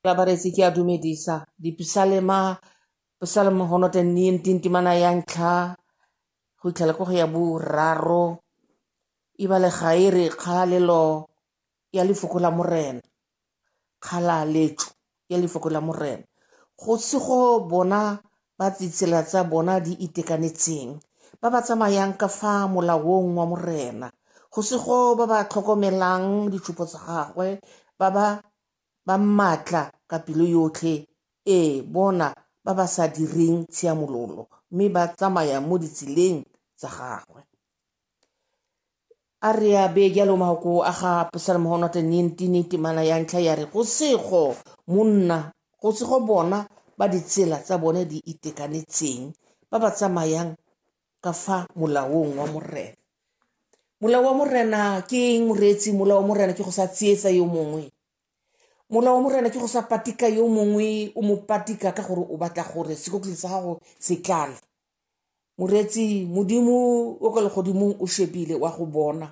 Babaresi ke a dumedisa dipisalema pisalema go notla nnenting temana ya ntlha go itlhela ko go ya boraro ebale ga e re kgalalelo ya lefoko la morena kgalaletso ya lefoko la morena go se go bona ba ditsela tsa bona di itekanetseng, ba ba tsamayang ka fa molaong wa Morena, go sego ba ba tlhokomelang ditshupo tsa gagwe, ba ba ba maatla ka pelo yotlhe, ee, bona ba ba sa direng tshiamololo, mme ba tsamaya mo ditseleng tsa gagwe. A re a bee jalo maoko a ga Absalom go nwa tennentini temana ya ntlha ya re go sego monna go sego bona ba ditsela tsa bone di itekanetseng ba ba tsamayang ka fa molaong wa morena molao wa morena ke eng moreetsi molao wa morena ke go sa tsietsa yo mongwe molao wa morena ke go sa patika yo mongwe o mo patika ka gore o batla gore sekotleng sa gago se tlale moretsi modimo o ka legodimong o shebile wa go bona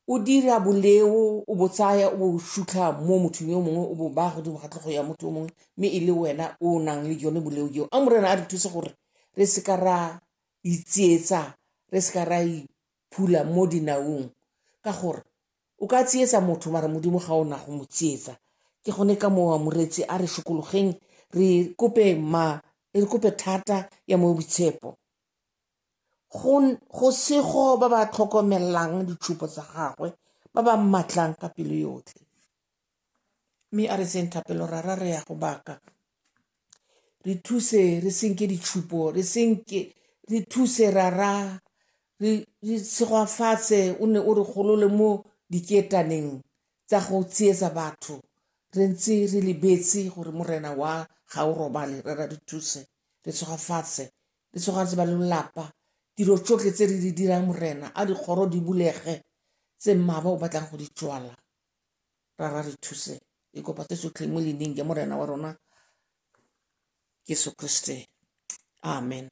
o dira boleo o bo tsaya o bo sutlha mo mothong yo mongwe o bo ba godimo ga tlhogo ya motho yo mongwe mme e le wena o nang le yone boleo jeo a morena a re thuse gore re seka ra itsietsa re seka ra iphula mo dinaong ka gore O ka tsietsa motho mara modimo ga ona go mo tsietsa ke gone ka mowa moretsi a re shokologeng re kope ma re kope thata ya mo boitshepo go sego ba ba tlhokomelang ditshupo tsa gagwe ba ba mmatlang ka pelo yotlhe mme a re tseng thapelo ra ra re ya go baka re thuse re senke ditšhupo re senke re thuse ra ra re segwafatse o ne o re golole mo diketaneng tsa go tsietsa batho re ntse re lebetse gore morena wa ga o robale re ra re thuse re tshogafase re tshogafase ba lelapa tiro tsotlhe tse re di dirang morena a dikgoro di bulege tse mmaba o batlang go di tswala ra ra re thuse e kopa tse tsotlhe mo leineng ya morena wa rona jesu kriste amen